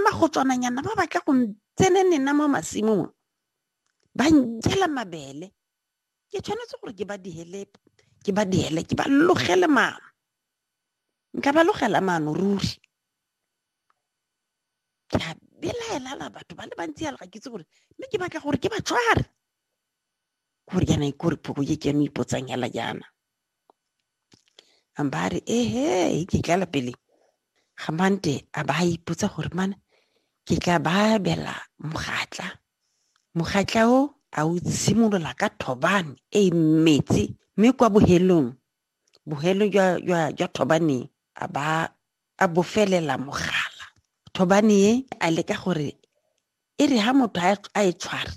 Magotswananyana ba batla go ntsenenena mo masimong ba njela mabele ke tshwanetse gore ke ba diele ke ba diele ke ba logele maano nka ba logela maano ruri ke a belaelala batho ba le bantsi ya lega ke itse gore mme ke batla gore ke ba tshware gore yana gore phoko ye ke yone ipotsang hela jaana a mba a re ehe ke tlala pele ga mante a ba a ipotsa gore mana ke tla ba abela mogatla mogatla o a o tshimolola ka thobane e e metsi mme kwa bohelong bohelo jwa jwa jwa thobane a ba a bofelela mogala thobane e a leka gore e re ha motho a e tshwara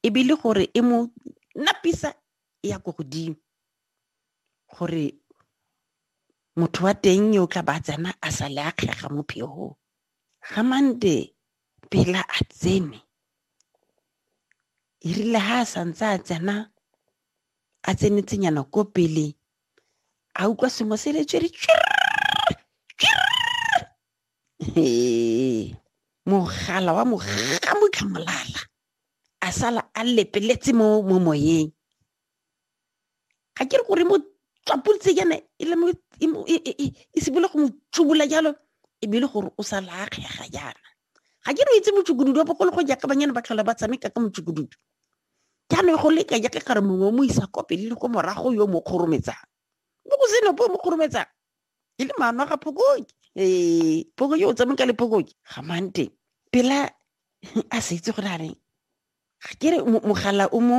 ebile gore e mo napisa e ya ko godimo gore motho wa teng yo o tla ba tsena a sa le a kgega mo phegong ga mande pela a tsene e rile ga a santse a tsena a tsenetsenyana ko pele a utlwa sengwe se le tswere mogala wa mogamotlhamolala a sala a lepeletse mo mo moyeng ga ke re gore mo tswapulitse yana e le e simole go mo tsubola jalo e bile gore o sa laakgega yana ga ke re itse motsukududu wa bogolo go jaaka banyana ba tlhola ba tshameka ka motsukududu jaanong go leka jaaka kare mongwe o mo isa kopele le ko morago yo mo kgorometsang mo go senope o mo kgorometsang e le mama ga phokoke ee phokoke o tsameka le phokoke ga mante pela a sa itse gore a reng ga ke re mogala o mo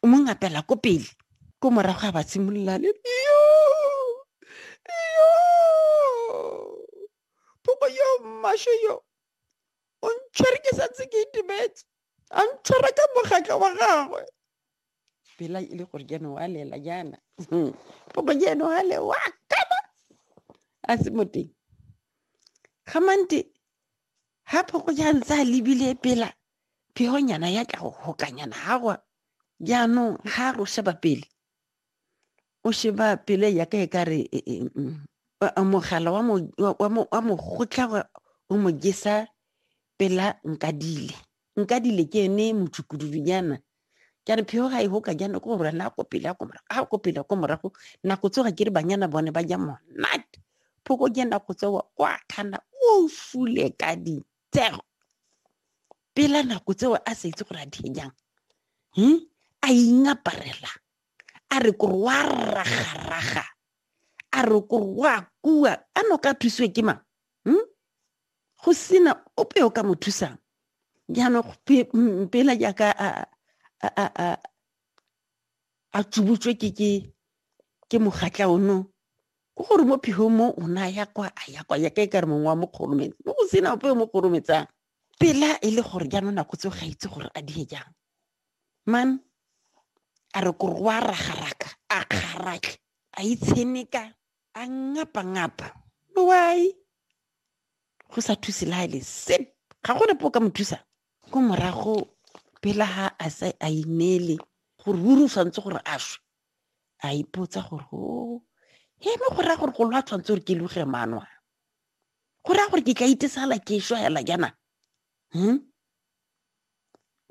o mo ngapela ko pele ko morago ga ba tshimolola le yo yo phoko yo mmasho yo o ntshwere ke santse ke itumetse a ntshwara ka mogatla wa gagwe Bila ili gore jeno wa lela jaana poko jeno wa le wa kana a se mo teng ga mante ha phoko ja ntse a lebile pela phehonyana ya tla go gokanyana ga gwa jaanong ga go sheba pele o sheba pele ya ka e ka re e, e, mm, mogala wa mogotla o mo jesa pela nkadile nkadile ke ene motšukududunyana ke re pheo ga e hoka jana ko gore na ko pele ko morago ga ko pele ko morago nako tsoga ke re banyana bone ba ja monate phoko ja nako tsewa kwa khana o fule ka ditsego pela nako tsewa a sa itse gore a di jang hmm? a ingaparela a re kore wa ragaraga a re kore wa kua a no ka thusiwe ke mang hmm? go sena ope o ka mo thusang jaanong mm, pela jaaka a tsubutswe ke ke ke mogatla ono o gore mo phigong mo o ne a ya kwa a ya kwa yaka e ka re mongwe wa mo kgorometse mo go sena ope o mo kgorometsang pela e le gore jaanong nako tseo ga itse gore a die jang man a re kore wa ragaraka a kgaratlhe a itsheneka a ngapa-ngapa why go sa thuse le ga e le sep ga go nepo o ka mo thusa ko morago pela ga a sa a ineele gore ruri o tshwanetse gore a shwe a ipotsa gore o oh, he mo go raya gore go lwa tshwanetse gore ke luge manwa go raya gore ke tla itesala ke shwa hela jaana hmm?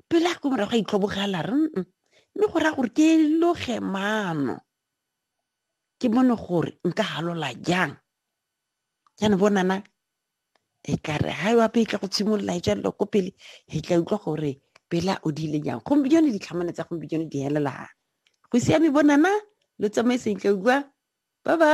pele a ko morago a itlhobogela re mme go raya gore ke loge maano ke bone gore nka halola jang jaanong bonana e ka re ha yo ape e tla go tshimolola e jalo ko pele e tla utlwa gore pela o dile jang gompieno ditlhamane tsa gompieno di helela go siame bonana lo tsamaiseng tla utlwa bye bye